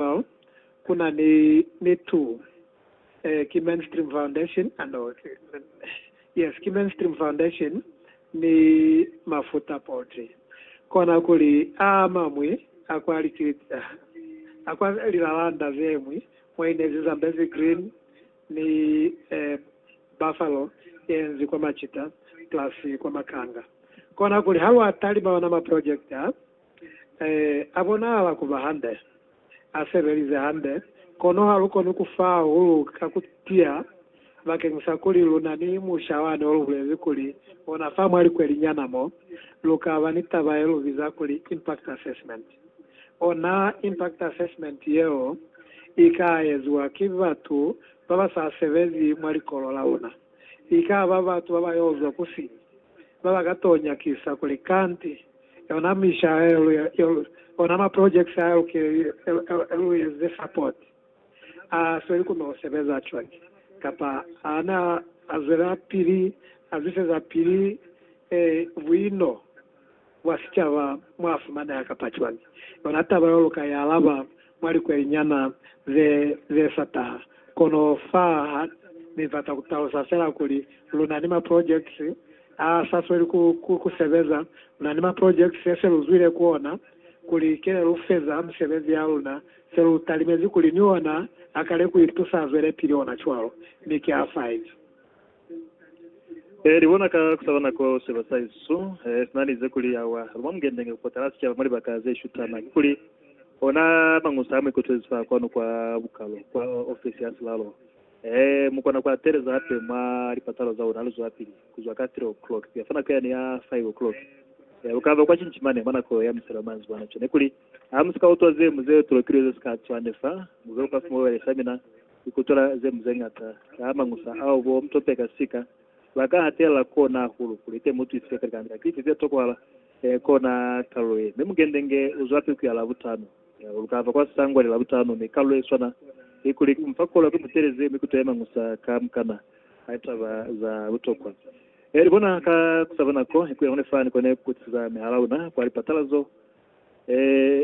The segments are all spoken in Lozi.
Well, ku na ni, ni tu. Eh, ki mainstream foundation, ah no, yes, ki mainstream foundation ni mafuta poti. Kona kuli a mamwi a kwa likiliti, ah, a kwa lilalanda zemwi mwaine zi Zambezi Green ni, eh, Buffalo yenzi kwa macita plus kwa makanga. Kona kuli ha lwa talima ona ma project a, A bonahala kuba hande, a sebelize hande, kono ha lu koni ku fa hahulu ka ku tiya bakeng sa kuli lu na ni musha wani o lu bulezi kuli ona fa mwa likweli nyana mo, lu ka ba ni taba ye lu biza kuli impact assessment. Ona impact assessment yeo i ka eziwa ki batu ba ba sa sebezi mwa likolo la luna. I ka ba batu ba ba yo zwa ku siñi, ba ba ka t'o nyakisa kuli kanti, Yona misha ona ma projects a lukile lu eze support. A sweli ku no sebeza cwani? Kapa a na zwela pili a zwiseza pili buino bwa sicaba mwa fumaneha kapa cwani? Yona taba yo lu ka i alaba. mwa likwelinyana ze, ze sa taha. Kono fa ha Ni bata ku talusa fela kuli, lu na ni ma projects a sa sweli ku, ku, ku sebeza, lu na ni ma projects ye se lu zwile ku ona, kuli kile lu feza misebezi ya luna, se lu talimezi kuli ni ona a kale ku itusa azwelepili ona cwalo. Mi ki a 5. E libona ka kusaba nako seba sa Yesu e sina lize kuli awa luma mukendenge kupota la sicaba mwa libaka ze shutana, kikuli ona Mangusa a mu ikutwezi fa kwanu kwa bukalo kwa ofesi ya silalo. E mukona ku ateleza hape mwa lipatalo za una luzwapili kuzwa ka 3 o'clock kuya fa nako yani ya 5 o'clock. E lukaba kwa cinci mane mwa nako ya miselo manzibwana. Cwale nekuli, Ha musika utwa ze mu ze tulokilwe ze sika cwani fa, muze lukafuma bubali fa mina. Ku kutwela ze mu ze ñata ka mañusa ao bo Mtope ka sika ba ka hatelela kona hahulu kuli te mu twisise kuli kanga ki ifi ze tokwahala kona kalulo ye. Mi Mugendenge u zwa piku ya Labutano. Lu ka fa kwa sangwa li Labutano, mi kalulo ye swana ni kuli ku mu fa kolo ki mu teleze mi kutwele mañusa ka mukana a taba za butokwa. Li bona ka ku sa ba nako ku ye hone fani kone ku kutisiza mihala luna kwa lipatalazo. E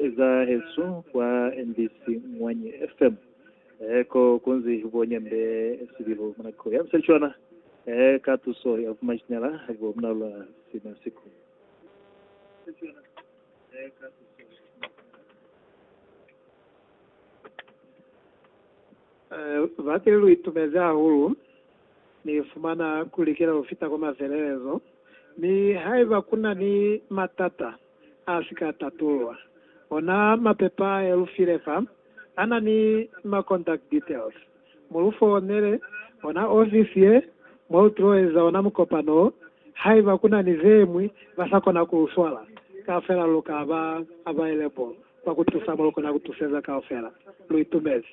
eza hesu kwa mbc Mwanyi FM e ko kunzi bo nyambe sibilu muna ko ya mselichwana e ka tuso ya vuma jinyala bo muna lwa sina siku. E bate lu itumezi hahulu ni fumana ku likela ku fita kwa mafelelezo mi haiba kuna ni matata. a si ka tatulwa. Ona mapepa ye lu file fa, a na ni ma contact details. Mu lu founele ona ofisi ye mwa lu tilo eza ona mukopano wo. Haiba ku na ni ze ñwi ba sa kona ku lu swala kaufela, lu ka ba available kwa ku tusa mo lu kona ku tuseza kaufela. Lu itumezi.